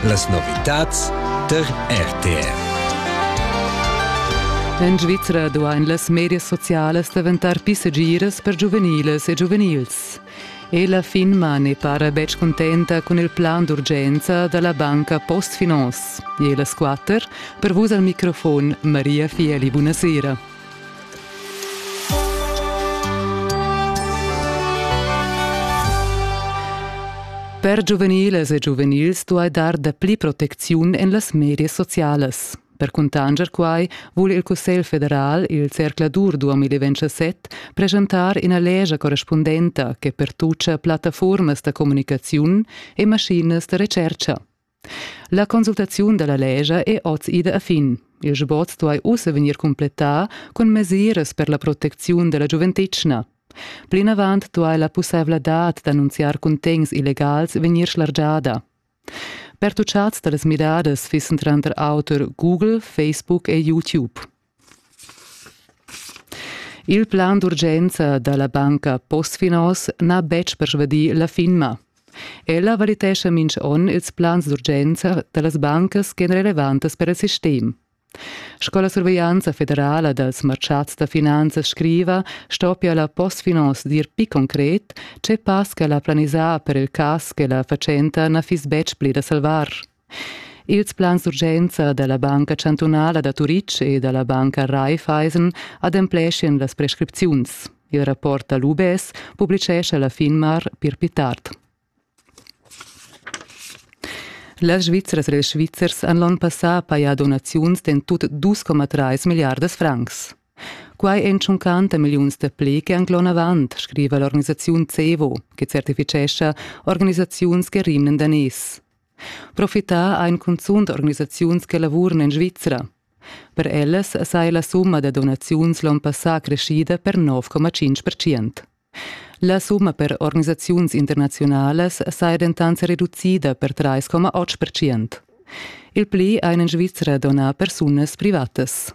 Las novitads tar RTR. En Svizra duain las medias socialas daventar pli segiras per giuveniles e giuvenils. E la FINMA ne para betg contenta cun il plan d'urgenza da la banca Postfinance. E las quatter, per vus al microfon Maria Fieli, buonasera. Per giuveniles e giuvenils duai dar dapli protecziun en las medias socialas. Per cuntanscher quai vul il Cussegl federal, il zercladur 2027, preschentar ina lescha correspundenta che pertuccia plattaformas da communicaziun e maschinas da retschertga. La consultaziun dalla lescha è oz ida a fin. Il sbot duai ussa vegnir cumplettà cun mesiras per la protecziun dalla giuventetgna. Plinavant duai la pussaivladad d'annunziar cuntegns illegals vegnir schlargiada. Pertuchads da las midadas fissen tranter auter Google, Facebook e YouTube. Il plan d'urgenza da la banca Postfinance n'ha betg persvadì la finma. Ella valitescha minch on ils plans d'urgenza da las bancas ch'èn relevantas per il sistem. Sco la surveglianza federala dals marchats da finanzas scriva, stoppia la Postfinance dir pli concret, tge pass ch'ella ha planisà per il cas che la fatschenta na fiss betg pli da salvar. Ils plans d'urgenza dalla Banca chantunala da Turitg e dalla banca Raiffeisen adempleschien las prescripziuns. Il rapport dall'UBS publicescha la Finmar pir pli tard. Las Svizzras e ils Svizzers han l'onn passà pajà donaziuns d'en tut 2,3 milliardas francs. Quai èn tschuncanta milliuns da pli che han l'onn avant, scriva l'organisaziun CEVO, che certifichescha organisaziuns che rimnan daners. Profità ein cunzunt organisaziuns che lavuran en Svizra. Per ellas sai la summa da donaziuns l'onn passà creschida per 9,5%. La summa per organisaziuns internazionalas sai dentant reducida per 3,8%. Il pli ein en Svizra donà persunas privatas.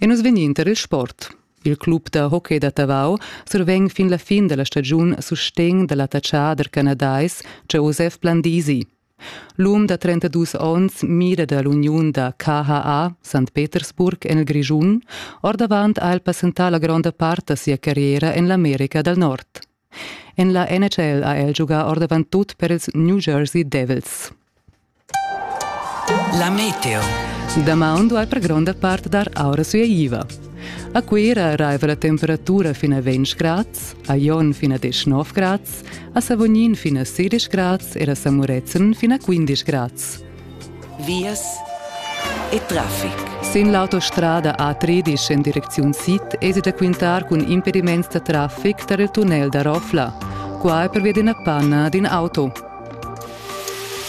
E nus vegnin tar il sport. Il club da hockey da Tavau survegn fin la fin da la stagiun sustegn da l'attachader canadais Joseph Blandisi. L'um da 32 onns mira da l'uniun da KHA St. Petersburg en il Grischun. Ordavant ha el passentà la gronda part da sia carriera en l'America dal Nord. En la NHL ha el giugà ordavant tut per ils New Jersey Devils. La meteo. Damaun duai per gronda part dar aura sueiva. A Cuira arriva la temperatura fin a 20 grads, a Jon fin a 19 grads, a Savognin fin a 16 grads e a Samurezzan fin a 15 grads. vias e traffic. Sin l'autostrada A13 en direcziun sid esi da quintar cun impediments da traffic tar il tunnel da Rofla. Qua è pervia d'ina panna d'in auto.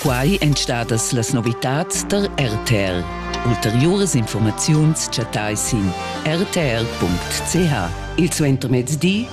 Quai èn stadas las novitads tar RTL. Ulteriuras informaziuns chattai sin rtl.ch. Il suentermezdi